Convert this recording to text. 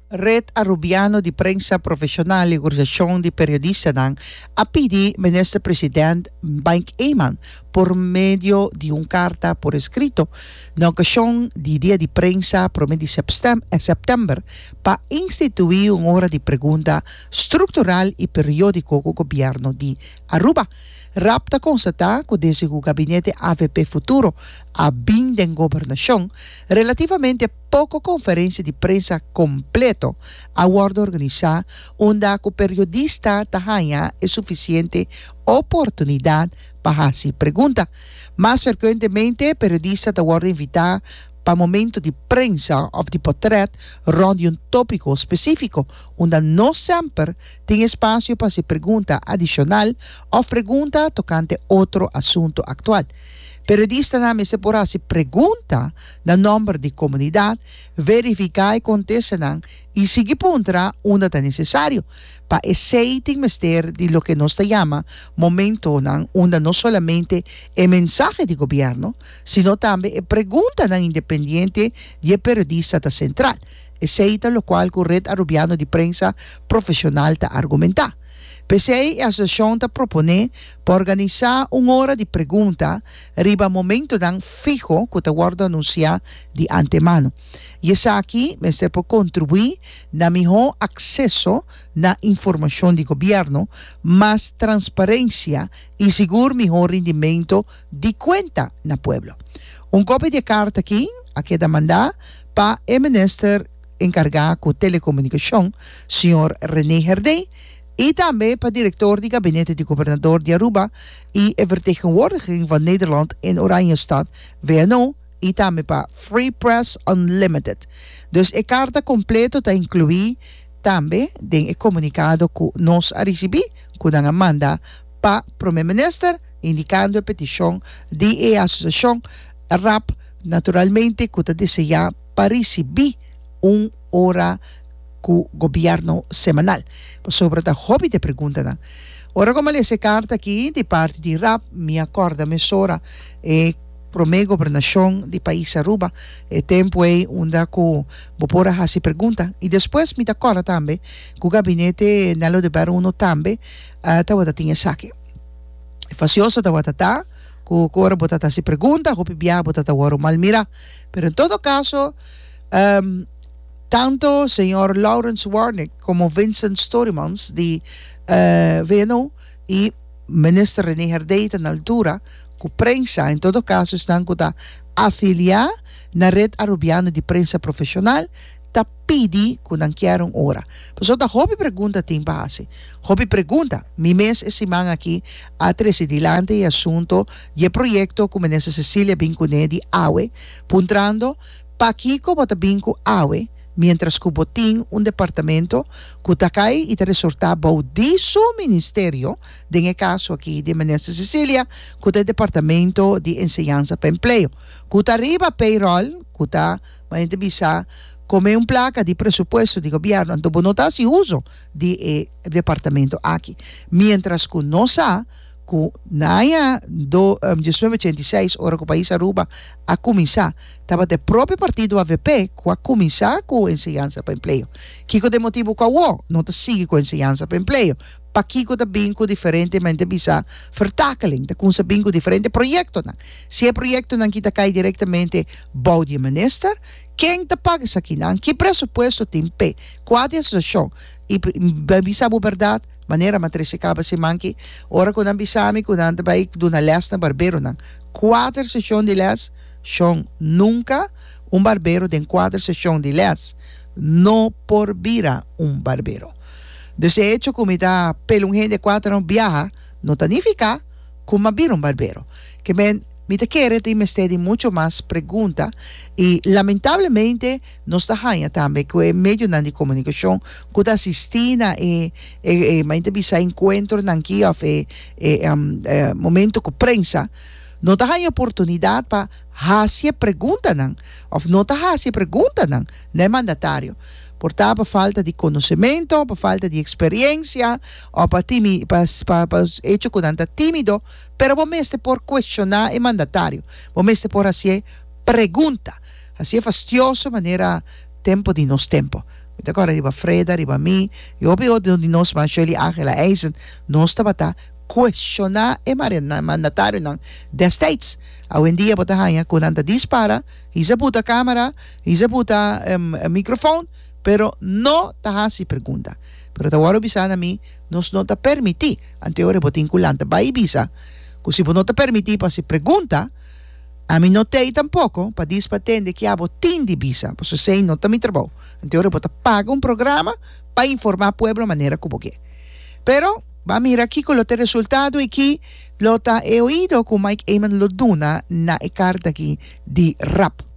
Red Arubiano di Prensa Profesional i Organisashon di Periodistanan a pidi Minister President Mike Eman por medio di un karta por eskrito na okashon di Dia di Prensa prome di Sèptèmber pa instituí un ora di pregunta struktural i periódiko ku Gobièrnu di Aruba rap ta konstatá ku desde ku Gabinete avp Futuro a bin den gobernashon relativamente poko konferensia di prensa kompleto a wòrdu organisá unda ku periodista ta haña e sufisiente oportunidat pa hasi pregunta. Mas ferkuentemente, periodista ta wòrdu invitá pa momentu di prensa òf di potrèt rònt di un tópiko spesífiko, unda no semper tin espasio pa hasi pregunta adishonal òf pregunta tokante otro asuntu aktual. Periodistanan mester por hasi pregunta na nòmber di komunidat, verifiká e kontestennan i sigui puntra unda ta nesesario. Pa esei tin mester di loke nos ta yama momentonan unda no solamente e mensahe di gobièrnu, sino tambe e preguntanan independiente di e periodista ta sentral. Esei ta lokual ku Red Arubiano di Prensa Profeshonal ta argumentá. P'esei e asosiashon ta proponé pa organisá un ora di pregunta riba momentonan fiho ku ta wòrdu anunsiá di antemano, i esaki mester por kontribuí na mihó akseso na informashon di gobièrnu, mas transparensia i sigur mihó rindimento di kuenta na pueblo. Un kopia di e karta aki a keda mandá pa e Minister. encarga cu Telecomunicacion, señor Rene Herdey, y tambe pa Director di Gabinete di Gobernador di Aruba y e Vertegenwoordiging van Nederland in Oranjestad, VNO, y tambe pa Free Press Unlimited. Dus e carta completo ta inclui tambe den e comunicado cu nos a ricibi cu nan a manda pa Prome Minister indicando e peticion di e Asociacion RAP, naturalmente cu ta desea pa risibí un ora ku gobièrnu semanal. Pasobra ta hopi di e preguntanan. Ora ku mi a lesa e karta akí di parti di rap, mi a kòrda mesora e promé gobernashon di pais Aruba, e tempu ei unda ku bo por a hasi pregunta. I despues mi ta kòrda tambe ku gabinete Nello de Berro Uno tambe tabata tin esaki. Fasioso tabata ta ku ora bo ta hasi pregunta, hopi biaha bo ta wòrdu malmirá. Pero en todo caso, ehm, tanto señor Lawrence Warnick como Vincent Storymans di, eh, VNO y Minister René Herdey ta na altura cu prensa, en todo caso esnan cu ta afilia na Red Arubiano di Prensa Profesional, ta pidi cu nan kier un ora. Pasobra ta hopi pregunta tin pa haci. Hopi pregunta. Mi mes e siman aki a trece dilanti e asunto di e proyecto cu Minister Cecilia bin cune di awe, puntrando, Pakico bo ta bin cu awe, mientras cu bo tin un departamento cu ta cay y ta resorta bou di su Ministerio, den e caso aki di Minister Cecilia, cu ta e Departamento di Enseñansa pa Empleo, cu ta riba payroll cu ta. Ma hende bisa, Como e un placa di presupuesto di gobierno, anto bo no ta haci uzo di e departamento aki. Mientras cu nos sa cu na aña do diecinueve ochenta y seis, ora cu pais Aruba a cuminsa, tabata e propio partido avp cu a cuminsa cu enseñanza pa empleo. Kico ta e motibo cu awo no ta sigui cu enseñanza pa empleo? Pakiko ta bin ku diferente, men ta bisa vertakeling, ta kumsa bin ku diferente proyektonan. Si e proyektonan ki ta kai direktamente bou di e minister, ken ta paga esakinan? Ki presupuesto tin p'e kua di asosiashon? I bai bisa bo bèrdat, manera mi a trese kaba siman ki, ora ku nan bisa mi ku nan ta bai duna lès na barberonan, kuater seshon di lès, shon, nunka un barbero den kuater seshon di lès no por bira un barbero. Dus e hecho ku mi ta pel un hende kua ta no biaha no ta nifiká ku m'a bira un barbero. Kemben mi ta kere tin mester di mucho mas pregunta i lamentablemente nos ta haña tambe ku e medionan di komunikashon ku ta asistí na e e men ta bisa enkuentronan aki òf e e momento ku prensa no ta haña oportunidat pa hasi e preguntanan òf no ta hasi e preguntanan na e mandatario. Por ta pa falta di konosementu, pa falta di eksperiensia, o pa timi, pa, pa, pa echo ku nan ta timido, pero bo mester por kueshoná e mandatario, bo mester por hasié pregunta, hasié fastioso manera tempu di nos tempu. Mi ta kòrda riba Freda, riba mi, i hopi otro di nos mas, Shirley Ángela Eisen, nos tabata kueshoná e mare, mandatarionan dèstèds. Awendia bo ta haña ku nan ta dispara, hizza buta kámara, Isa buta e microfoon pero no ta hasi pregunta. Pero ta wòrdu bisa na mi, nos no ta permití, anto ora bo tin ku lanta bai bisa ku si bo no ta permití pa hasi pregunta, ami no t'ei tampoko pa dis pa tende ke abo tin di bisa, paso esei no ta mi trabou. Anto ora bo ta paga un programa pa informá pueblo manera ku bo ke. Pero b'a mira kiko lo ta e resultado i ki lo ta e oido ku Mike Eman lo duna na e karta aki di rap.